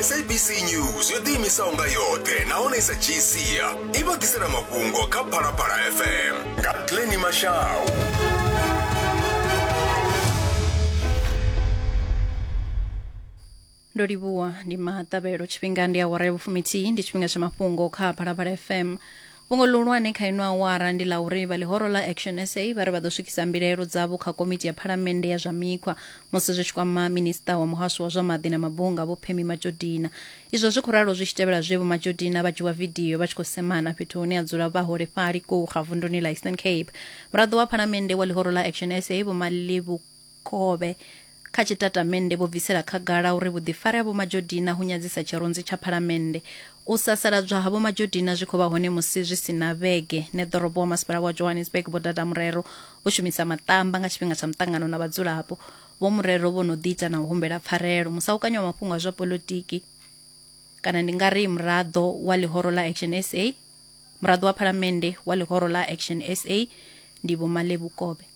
sabc news yo ḓiimisaho nga yoṱhe nahone i sa dzhii sia i vha ḓisela mafhungo kha phalaphala fm nga pleni mashau ndo livhuwa ndi maṱavhelo tshifhinga ndi awara ya vhufumithihi ndi tshifhinga tsha mafhungo kha phalaphala fm Fhungo ḽihulwane kha ino awara ndi ḽa uri vha ḽihoro ḽa Action sa vha ri vha ḓo swikisa mbilaelo dzavho kha Komiti ya Phalamennde ya zwa Mikhwa musi zwi tshi kwama Minisṱa wa Muhasho wa zwa Maḓi na Mabunga Vho Phemi Matjodina. Izwo zwi khou ralo zwi tshi tevhela zwe Vho Matjodina vha dzhiwa vidio vha tshi khou semana fhethu hune ha dzula vhaholefhali Kouga vunduni ḽa Eastern Cape. Muraḓo wa Phalamennde wa ḽihoro ḽa Action sa Vho Malebo Khovhe. Kha tshitatamennde vho bvisela khagala uri vhuḓifari ha Vho Majodina hu nyadzisa tshirunzi tsha Phalamennde. U sasaladzwa ha Vho Majodina zwi khou vha hone musi zwi si na vhege neḓorobo wa Masipala wa Johannesburg Vho Dada Murero vho shumisa maṱamba nga tshifhinga tsha muṱangano na vhadzulapo. Vho Murero vho no ḓiita na u humbela pfarelo. Musahukanyi wa mafhungo a zwa poḽotiki kana ndi nga ri muraḓo wa ḽihoro ḽa Action sa, muraḓo wa Phalamennde wa ḽihoro ḽa Action sa ndi Vho Malebu Khovhe.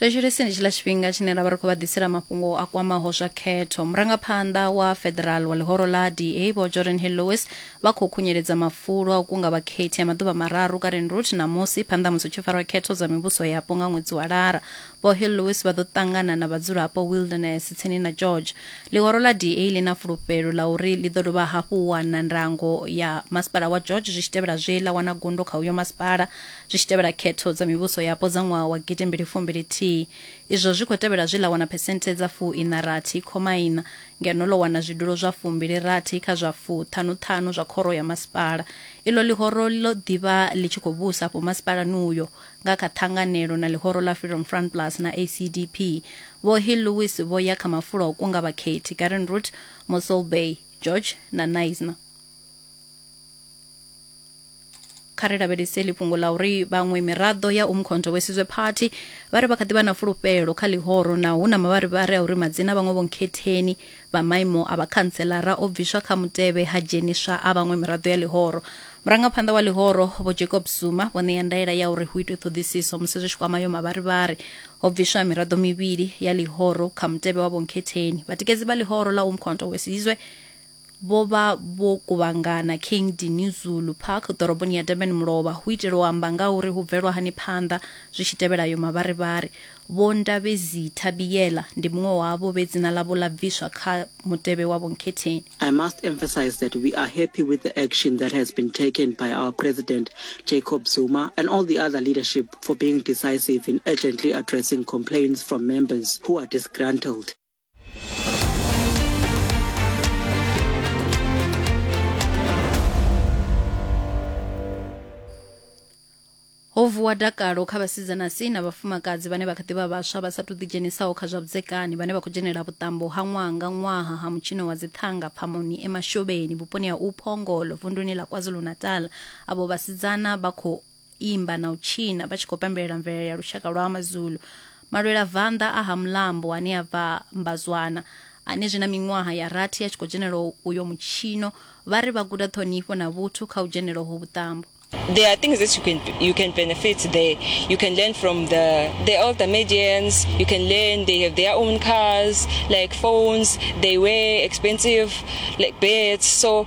Thetsheleseni tshiḽa tshifhinga tshine ra vha ri khou vha ḓisela mafhungo a kwamaho zwa khetho. Murangaphanḓa wa Federal wa ḽihoro ḽa DA Vho Jordan Hill Lewis vha khou khunyeledza mafulo a u kunga vhakhethi a maḓuvha mararu Karen Route ṋamusi phanḓa ha musi hu tshi farwa khetho dza mivhuso yapo nga ṅwedzi wa Lara. Vho Hill Lewis vha ḓo ṱangana na vhadzulapo Wilderness tsini na George. Ḽihoro ḽa DA ḽi na fulufhelo ḽa uri ḽi ḓo dovha hafhu u wana ndango ya masipala wa George zwi tshi tevhela zwe ḽa wana gundo kha uyo masipala zwi tshi tevhela khetho dza mivhuso yapo dza ṅwaha wa gidi mbili fumbili thihi. Izwo zwi khou tevhela zwe ḽa wana phesenthe dza fuiṋa rathi khoma iṋa ngeno ḽo wana zwidulo zwa fumbili rathi kha zwa fuṱhanu ṱhanu zwa khoro ya masipala. Iḽo ḽihoro ḽo ḓi vha ḽi tshi khou vhusa afho masipalani uyo nga kha ṱhanganelo na ḽihoro ḽa Freedom Front Plus na ACDP. Vho Hill Lewis vho ya kha mafulo a u kunga vhakhethi, Karen Root, Mossel Bay, George na Knysna. kha ri lavhelese ḽi fhungo ḽa uri vhaṅwe miraḓo ya umkhonto wesizwe party vha ri vha kha ḓi vha na fulufhelo kha ḽihoro na hu na mavharivhari a uri madzina a vhaṅwe vhonkhetheni vha maimo a vhakhantselara o bviswa kha mutevhe ha dzheniswa a vhaṅwe miraḓo ya ḽihoro murangaphanḓa wa ḽihoro vho jacob zuma vho ṋea ndaela ya uri hu itwe ṱhoḓisiso musi zwi tshi kwama yo mavharivhari ho bviswa miraḓo mivhili ya ḽihoro kha mutevhe wa vhonkhetheni vhatikedzi vha ḽihoro ḽa umkhonto wesizwe vho vha vho kuvhangana King Dinuzulu Park ḓoroboni ya Durban Mulovha hu itela u amba nga uri hu bvelwa hani phanḓa zwi tshi tevhela ayo mavharivhari. Vho Ndabezitha Biyela ndi muṅwe wavho vhe dzina ḽavho ḽa bviswa kha mutevhe wa Vho Nkhetheni. I must emphasize that we are happy with the action that has been taken by our President Jacob Zuma and all the other leadership for being decisive in urgently addressing complaints from members who are disgruntled. ho vuwa dakalo kha vhasidzana si na vhafumakadzi vhane vha kha ḓivha vhaswa vha sa tou ḓidzhenisaho kha zwa vhudzekani vhane vha khou dzhenela vhuṱambo ha ṅwaha nga ṅwaha ha mutshino wa dzithanga phamoni emashobeni vhuponi ha uphongolo vunduni ḽa kwazulu-natal avho vhasidzana vha khou imba na u tshina vha tshi khou pembelela mvelele ya lushaka lwa mazulu malwela vanḓa a ha mulambo ane a bva mbazwana ane zwi na miṅwaha ya rathi a tshi khou dzhenela uyo mutshino vha ri vha guda ṱhonifho na vhuthu kha u dzhenela ho vhuṱambo there are things that you can you can benefit there. You can learn from the the older medians. You can learn they have their own cars, like phones. They wear expensive like beds. So